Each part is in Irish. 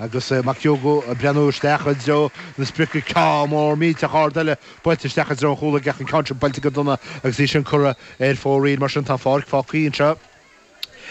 Agus McHugo ag breathnú isteach i dtreo na sprice ceann mór millteach ard eile buailte isteach i dtreo an chúl aige ach an ceann seo buailte go dona agus í sin curtha ar fóraoil. Mar sin tá an pháirc fágtha anseo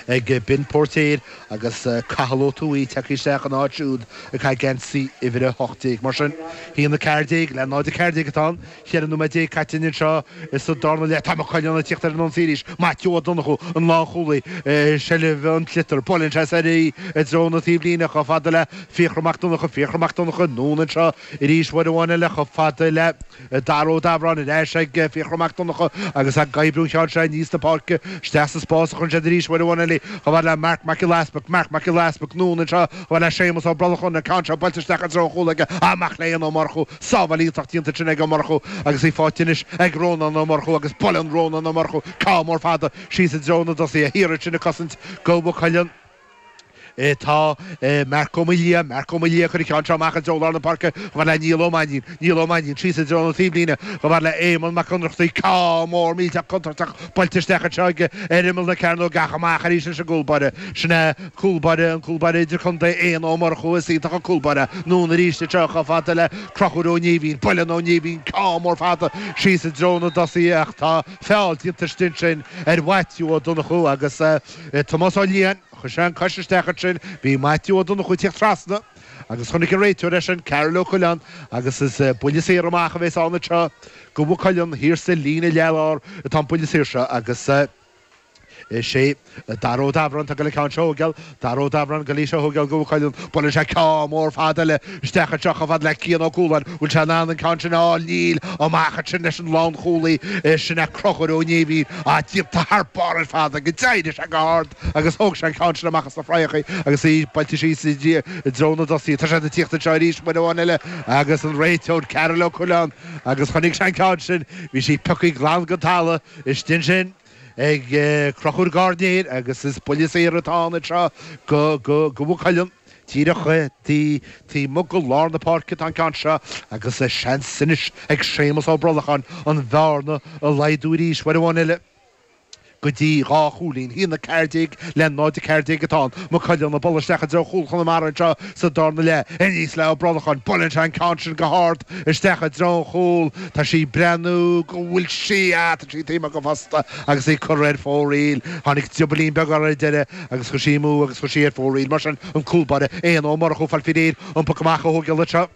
ag Ben Póirtéir agus Cathal Ó Tuathaigh tagtha isteach ina áit siúd ag caitheamh geansaí uimhir 18. Mar sin, 1-14 le 0-14 atá ann. Ceithre nóiméad déag caite againn anseo insa darna leath. Tá Maigh Cuilinn ag tíocht ar an ionsaí arís. Maitiú Ó Donnchú, an lánchúlaí, i seilbh an tsliotar. Buaileann sé soir í i dtreo na taobhlíne chomh fada le Fiachra Mac Donnacha. Fiachra Mac Donnacha, anonn anseo arís, uair amháin eile chomh fada le Dara Ó Dabhráin. Ar ais ag Fiachra Mac Donnacha agus ag oibriú an cheann seo aníos na páirce. Isteach sa spás a chuireann siad arís uair amháin eile chomh fada le Marc Mac Giolla Easpaig. Marc Mac Giolla Easpaig, anonn anseo chomh fada le Séamas Ó Brollacháin. An ceann seo buailte isteach i dtreo chúl aige amach le Éanna Ó Murchú. Sábháil iontach déanta ansin ag Ó Murchú agus í faighte anois ag Rónán Ó Murchú agus buaileann Rónán Ó Murchú ceann mór fada síos i dtreo na dtosaithe thiar ansin ag cosaint go Mhaigh Cuilinn atá Marc Ó Maoildhia, Marc Ó Maoildhia ag cur an ceann seo amach i dtreo lár na páirce chomh fada le Niall Ó Mainnín, Niall Ó Mainnín síos i dtreo na taobhlíne chomh fada le Éamonn Mac Ionnrachtaigh, ceann mór millteach contúirteach buailte isteach anseo aige ar imeall na cearnóige ach amach arís leis an gcúl báire sin é Cúl báire, an cúl báire idir-chontae Éanna Ó Murchú is iontach an cúl báire anonn arís anseo chomh fada le Crochúr Ó Néimhín. Buaileann Ó Néimhín ceann mór fada síos i dtreo na dtosaithe ach tá feall déanta istigh ansin ar Mhaitiú Ó Donnchú agus Tomás Ó Liatháin. Chuir sé an cois isteach ansin. Bhí Maitiú Ó Donnchú ag tíocht trasna agus chonaic an réiteoir é sin, Karl Ó Coileáin, agus is buille saor amach a bhéas ann anseo. Go Mhaigh Cuilinn thiar sa líne leath-lár atá an buille saor seo agus. Is é Dara Ó Dabhráin atá ag goil an ceann seo a thógáil, Dara Ó Dabhráin ag goil í seo a thógáil go Mhaigh Cuilinn, buaileann sé ceann mór fada eile isteach anseo chomh fada le Cian Ó Cualáin, bhfuil sé in ann an ceann sin a fháil? Níl, amach ansin leis an lánchúlaí is sin é Crochúr Ó Néimhín, ach déanta thar barr ar fad agus d'éirigh sé go hard agus thóg sé an ceann sin amach as na fraitheacha agus í buailte síos i dtreo na dtosaithe. Tá siad ag tíocht anseo arís, uair amháin eile agus an réiteoir Karl Ó Coileáin agus chonaic sé an ceann sin, bhí sí pioctha glan den talamh. Istigh ansin ag Crochúr Gairnéir agus is buille saor atá ann anseo go Mhaigh Cuilinn. Díreach taobh amuigh go lár na páirce atá an ceann seo agus seans anois ag Séamus Ó Brolacháin an bhearna a laghdú arís uair amháin eile go dtí dhá chúilín. 1-14 le 0-14 atá ann. Maigh Cuilinn ag bualadh isteach i dtreo chúl Chonamara anseo sa darna leath. Aníos le Ó Brolacháin. Buaileann sé an ceann sin go hard. isteach i dtreo an chúl. Tá sí ag breathnú go bhfuil sí a. Tá sí taobh amuigh gon phosta agus í curtha ar fóraoil. Tháinig driobaillín beag uirthi ar deireadh agus chuaigh sí amú agus chuaigh sí ar fóraoil. Mar sin an cúl báire, Éanna Ó Murchú, ag fáil faoi réir an poc amach a thógáil anseo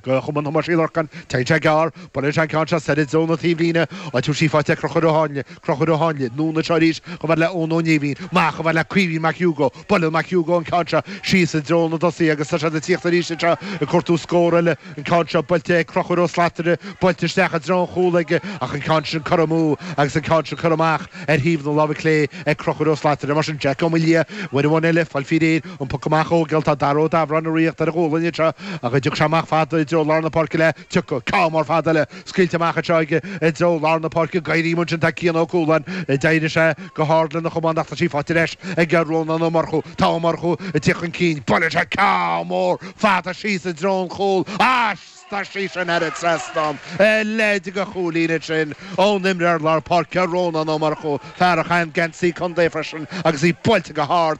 go chumann Thomáis Uí Lorcáin. Téann sé gearr, buaileann sé an ceann seo soir i dtreo na taobhlíne, áit a bhfuil sí faighte ag Crochúr Ó hÁinle. Conchúr Ó hÁinle, anonn anseo arís chomh fada le Eoin Ó Néimhín, amach chomh fada le Caoimhín Mac Úgó. Buaileann Mac Úgó an ceann seo síos i dtreo na dtosaithe agus tá siad ag tíocht arís anseo ag cuartú scór eile. An ceann seo buailte ag Conchúr Ó Slatara, buailte isteach i dtreo an chúl aige ach an ceann sin curtha amú agus an ceann sin curtha amach ar thaobh na láimhe clé ag Conchúr Ó Slatara. Mar sin Jack Ó Maolaodha uair amháin eile fáil faoi réir, an poc amach ó gheall tá Dara Ó Dabhráin ag tíocht ar a ghualainn anseo ach an dtiocfaidh sé amach fada i dtreo lár na páirce le Tiocfaidh ceann mór fada eile scaoilte amach anseo i dtreo lár na páirce ag éirí ansin tá Cian Ó Cualáin d'éirigh sé go hard lena chamán ach tá sí faighte ar ais ag Rónán Ó Murchú. Tá Ó Murchú ag tíocht chun cinn buaileann sé ceann mór fada síos i dtreo an chúl ach tá sí sin thar an trasnán a leithéid de chúilín sin ón imreoir lár páirce Rónán Ó Murchú, fear a chaitheann geansaí contae freisin agus í buailte go hard.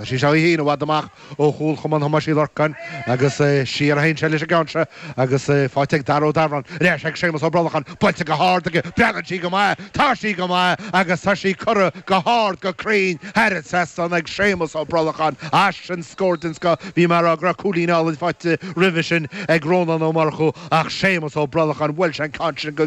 Chuir sé seo é féin i bhfad amach ó chúl Chumann Thomáis Uí Lorcáin agus siar a théann sé leis an gceann seo agus faighte ag Dara Ó Dabhráin. Ar ais ag Séamus Ó Brolacháin, buailte go hard aige, breathnaíonn sí go maith, tá sí go maith agus tá sí curtha go hard go cruinn thairis ansin ag Séamus Ó Brolacháin. Ansin scór den scoth, bhí mé ag rá go raibh cúilín álainn faighte roimhe sin ag Rónán Ó Murchú ach Séamus Ó Brolacháin, bhuail sé an ceann sin go